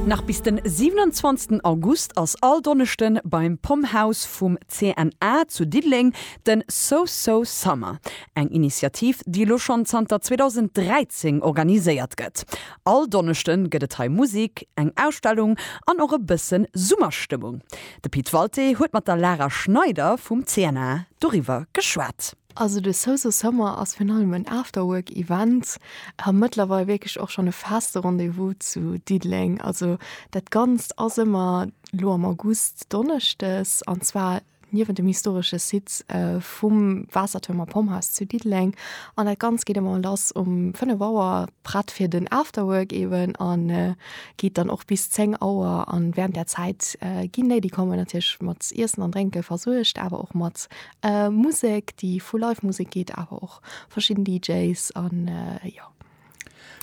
Nach bis den 27 August ass all Donneschden beim Pom Haus vum CNA zu Diddeleng den So So Summer, eng Initiativ déi elo schonn zanter 2013 organiséiert gëtt. All Donneschden gëtt et hei Musik, eng Ausstellung an och e bëssen Summerstëmmung. De Pit Walté huet mat der Lara Schneider vum CNA doriwwer geschwat. Also de Soso Summer ass virun allem en Afterwork Event a mëttlerweil wierklech och schonn e feste Rendez-vous zu Diddeleng. Also dat Ganzt ass ëmmer lo am August donneschdes an zwar niewent dem historesche Site vum Waassertuerm a Pomphaus zu Diddeleng an dat Ganzt geet ëmmer lass um 5 Auer prett fir den Afterwork eeben a geet dann och bis 10 Auer an während där Zäit ginn déi déi kommen natierlech mat Iessen an Drénke versuergt awer och mat Musek déi vu Live Musek geet awer och verschidden DJs an jo.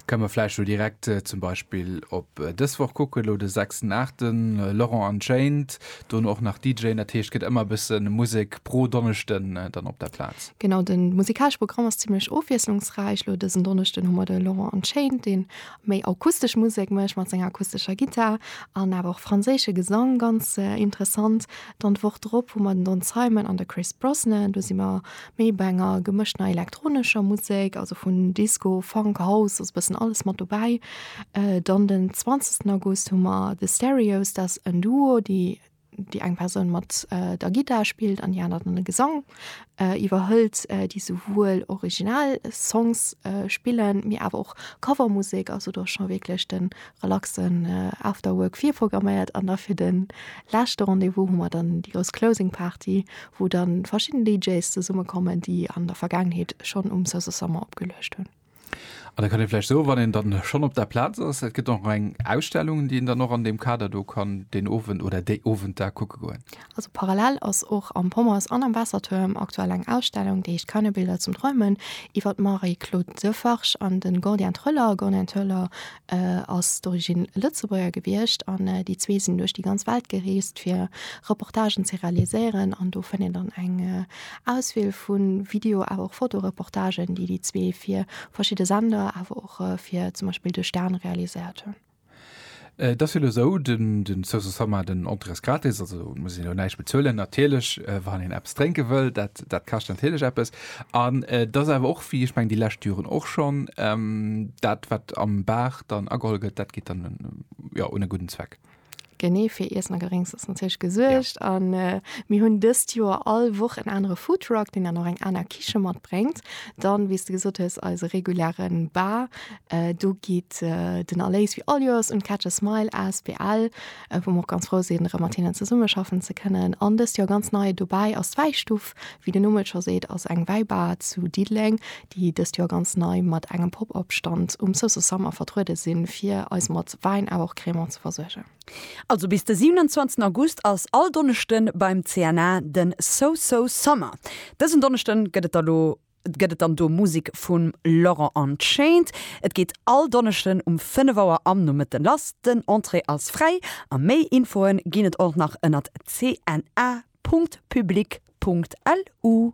Kënne mer vläicht elo direkt zum Beispill op dës Woch kucken, elo de sechsten Aachten, Laurent Unchained, dono och nach DJen, dat heescht gëtt ëmmer e bësse Musek pro Donneschden dann op der Plaz? Genau, de musikalesche Programm ass zimlech ofwiesslungsräich. Elo dësen Donneschden hu mer de Laurent Unchained, dee méi akustesch Musek mécht mat senger akustescher Gittar an awer och franséische Gesang, ganz interessant. Dann d'Woch drop hu mer den Don Simon an de Chris Brosnan. Do si mer méi bei enger gemëschter elektronescher Musek, also vun Disco, Funk, House, ass e bëssen alles mat dobäi. Dann den 20. August hu mer The Stereos, dat ass en Duo, déi, déi eng Persoun mat der Gittar spillt an déi aner dann de Gesang iwwerhëlt, déi souwuel Originalsongs spillen, mee awer och Covermusek, also do ass scho wierklech de relaxen After Work virprogramméiert an da fir de leschte Rendez-vous hu mer dann déi grouss Closing Party, wou dann verschidden DJs zesumme kommen, déi an der Vergaangenheet schonn um Sosa Summer opgeluecht hunn. An da kann ee vläicht soen, wann een dann schonn op der Plaz ass, et gëtt och nach eng Ausstellung, déi een dann och an deem Kader do kann deen Owend oder déi Owenter kucke goen. Also parallel ass och am Pommers an am Waassertuerm aktuell eng Ausstellung, déi heescht Keine Bilder zum Träumen, iwwer d'Marie-Claude Defarge an de Gordien Thöller. Gordien Thöller ass d'origine Lëtzebuerger gewiescht an déi zwee sinn duerch déi ganz Welt gereest, fir Reportagen ze realiséieren. An do fënnt een dann eng Auswiel vu Video-, awer och Fotoreportagen, déi déi zwee fir verschidde Sender, awer och fir zum Beispill de Stern realiséiert hunn. Et ass jo elo esou, den, den Social Summer, den Entrées gratis, also et muss een elo näischt bezuelen, natierlech, wann een eppes drénke wëll, dat, dat kascht natierlech eppes. An et ass awer och, wéi ech mengen déi lescht Joren och schonn, dat wat am Bar dann ageholl gëtt, dat geet dann, jo, un e gudden Zweck. Genee fir Iessen a Gedrénks ass natierlech gesuergt. Ja. An äh, mir hunn dëst Joer all Woch en anere Foodtruck, den dann och eng aner Kiche matbréngt. Dann, wéi du gesot hues, eise regulären Bar. Äh, do geet äh, den Erléis wie all Joers un Catch a Smile asbl, äh, wou mer ganz frou sinn, erëm mat hinnen zesummeschaffen ze kënnen. An dëst Joer ganz nei dobäi ass d'Wäistuf. Wéi den Numm et scho seet, ass eng Wäibar zu Diddeleng, déi dëst Joer ganz nei mat engem Pop-Up Stand um Sousou Summer vertruede sinn, fir eis mat Wäin awer och Crémant ze versuergen. Also bis de 27 August ass all Donneschden beim CNA de Sousou Summer. Dësen Donneschden gëtt et da lo gëtt et dann do Musik vum Laurent Unchained. Et geet all Donneschden um 5 Auer am Nomëtten lass. Den Entrée ass fräi a méi Infoen ginn et och nach ënnert cna.public.lu.